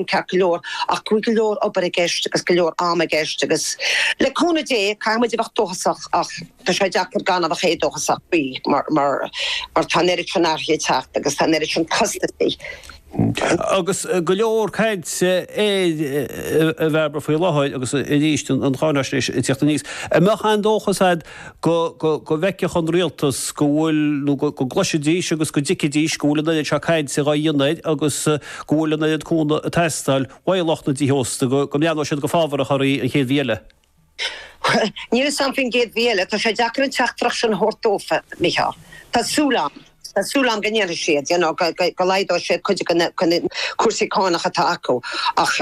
ceart go leor, ach go leor obair i gceist agus go leor ama i gceist agus, le cúnamh Dé, caithfidh muid a bheith dóchasach ach tá sé deacair gan a bheith éadóchasach faoi mar, mar, mar tá an oiread sin athruithe ag teacht agus tá an oiread sin costasaí. Agus go leor caint, a Bhairbre, faoi láthair agus arís an cháinaisnéis ag teacht aníos, an mbeadh aon dóchas a'd go bhfeicfeadh an rialtas go bhfuil, nó go gcloisfidís agus go dtuigfidís go bhfuil an oiread seo cainte á dhéanamh air agus go bhfuil an oiread cúnamh ag teastáil ó lucht na dtithe ósta go mbreathnódh siad go fábharach air an chéad mhí eile. Níl a fhios agam faoin gcéad mhí eile. Tá sé deacair an teachtaireacht sin a thabhairt dófa, Micheál. Tá súil agam. Súil agam go ndéanfaidh siad, you know, go laghdóidh sé cuid de na cúrsaí cánach atá acu ach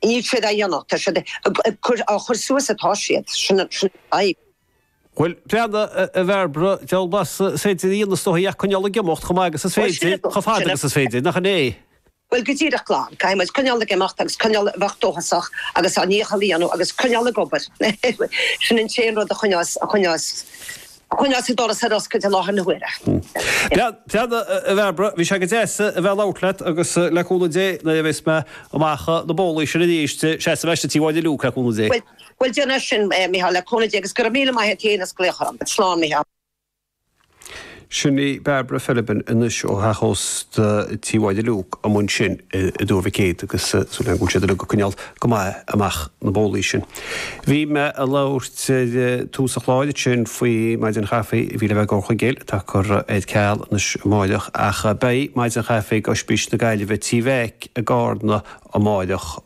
níl siad á dhéanamh, tá siad ag cur, á chur suas atá siad, sin an fhadhb. Bhuel, breathnaigh, a Bhairbre, deabhal mórán is féidir a dhéanamh is dóigh ach coinneáil ag imeacht chomh maith agus is féidir, chomh fada agus is féidir, nach in é? Bhuel, go díreach glan. Caithfidh muid coinneáil ag imeacht agus coinneáil a bheith dóchasach agus ár ndícheall a dhéanamh agus coinneáil ag obair. Sin an t-aon rud a choinneoidh, a choinneoidh, a choinneoidh an doras ar oscailt i láthair na huaire. Breathnaigh, a Bhairbre, bhí sé go deas a bheith ag labhairt leat agus le cúnamh Dé, nuair a bheas mé amach na bólaí sin arís, seasfaidh mé isteach Tí Mháire Luke, le cúnamh Dé. Bhuel, bhuel, déan é sin, a Mhícheáil, le cúnamh Dé, agus go raibh míle maith a't fhéin as glaoch orm. Slán, Mícheál. Sin í Bairbre Philibin anois ó theach ósta Tí Mháire Luke amuigh ansin i dTuar Mhic Éadaigh agus súil agam go bhfuil siad uilig ag coinneáil go maith amach na bólaí sin. Bhí mé a' labhairt ar thús an chláir ansin faoi Mhaidin Chaife a bhí le bheith i nDoire Chonghaile atá curtha ar ceal anois amáireach ach beidh Maidin Chaife ag Oispís na Gaillimhe Tí Mheaic i gCarna amáireach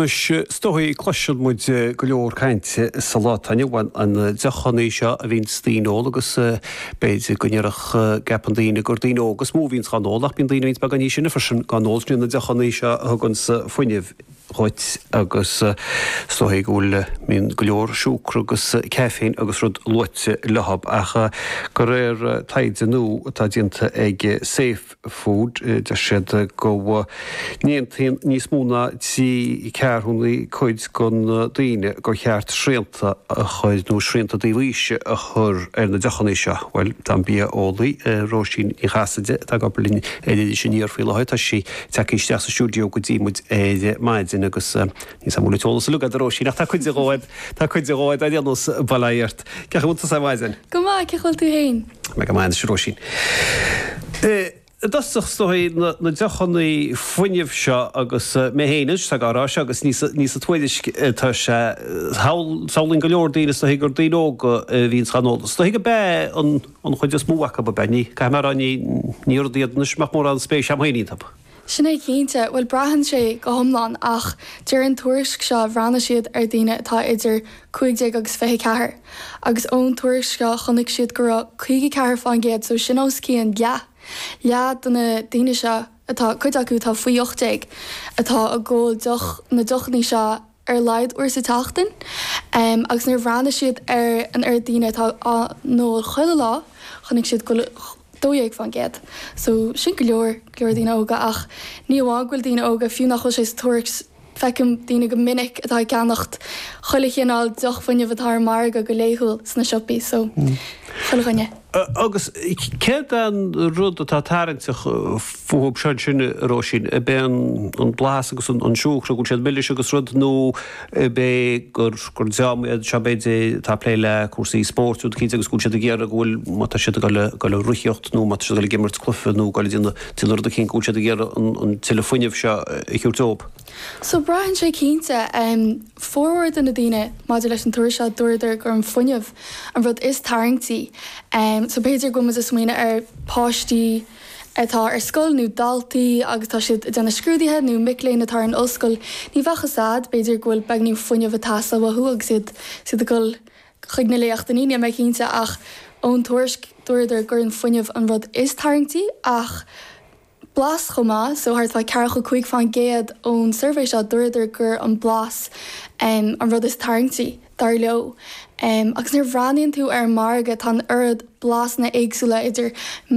Anois, is dóichí cloiseann muid go leor cainte sa lá atá inniu ann, ar na deochannaí seo a bhíonns daoine ag ól agus b'fhéidir go gceapann daoine gur daoine óga is mó a bhíonns dhá n-ól ach bíonn daoine a bhíonns beagán níos sine freisin dhá n-ól, sin iad na deochannaí seo a thuganns fuinneamh dhuit agus is dóichí go bhfuil, bíonn go leor siúcra agus caiféin agus rud luaite leo ach de réir taighde nua atá déanta ag Safe, food. Deir siad go n-aontaíonn níos mó ná trí ceathrúnaí cuid de na daoine gur cheart srianta a chur, nó srianta dlí aois a chur, ar na deochanna seo. Bhuel, tá an bia-eolaí Róisín Ní Chasaide atá ag obair linn ar Iris Aniar faoi láthair, tá sí tagtha isteach sa stiúideo go dtí muid ar maidin agus níl móide an t-eolas uilig a'd, a Róisín, ach tá cuid de dhóibh, tá cuid de dhóibh, ar aon nós, bail agat. Cén chaoi a bhfuil tusa ar maidin? Go maith, cén chaoi a bhfuil tú féin? Mé go maith anois, a Róisín. I dtosach, is dóichí na deochanna fuinnimh seo agus mé féin anois atá á rá seo agus ní sa tuairisc atá sé, samhlaíonn go leor daoine, is dóichí gur daoine óga a bhíonns dhá n-ól, is dóichí gob ea an chuid is mó acu, ab ea? Caithfidh mé a rá, ní rud iad anois a mbeadh mórán spéise agam féin iontu. Sin é cinnte. Bhuel, braitheann sé go hiomlán, ach deir an tuairisc seo, bhreathnaigh siad ar daoine atá idir 15 agus 24, agus ón tuairisc seo chonaic siad go raibh 54% so sin os cionn leath, leath de na daoine seo atá, cuid acu atá faoi 18, atá ag ól na deochanna seo ar a laghad uair sa tseachtain, agus nuair a bhreathnaigh siad ar an oiread daoine atá á n-ól chuile lá, chonaic siad go bhfuil 12 fán gcéad, so sin go leor, go leor daoine óga, ach ní amháin go bhfuil daoine óga, fiú nach bhfuil sé sa tuairisc, feicim daoine go minic atá ag ceannacht chuile chineál deoch fuinnimh atá ar an margadh go laethúil sna siopaí, so chuile dhuine. Agus céard é an rud atá tarraingteach fúthu seo, ansin, a Róisín? Ab é an blas agus an siúcra, go bhfuil siad milis agus rud, nú ab é gur dream iad seo, b'fhéidir, atá ag plé le cúrsaí spóirt, rud eicínt, agus go bhfuil siad ag iarraidh go bhfuil, má tá siad ag dul ag rothaíocht nó má tá siad ag dul ag imirt cluife nó ag dul ag déanamh rud eicínt, go bhfuil siad ag iarraidh an tuilleadh fuinnimh seo a thabhairt dóibh? So braitheann sé cinnte. Formhór de na daoine maidir leis an tuairisc seo, dúradar gur an fuinneamh an rud is tarraingtí. So b'fhéidir go bhfuil muid ag smaoineamh ar páistí atá ar scoil nó daltaí agus tá siad ag déanamh scrúduithe nó mic léinn atá ar an ollscoil, ní bheadh a fhios agat, b'fhéidir go bhfuil beagnín fuinneamh ag teastáil uathu agus iad ag dul chuig na léachtannaí, níl mé cinnte ach ón tuairisc dúradar gur an fuinneamh an rud is tarraingtí ach blas chomh maith, so thart fá ceathracha cúig fán gcéad ón suirbhé seo, dúradar gur an blas an rud is tarraingtí, dar leo. Agus nuair a bhreathnaíonn tú ar an margadh, tá an oiread blasanna éagsúla, idir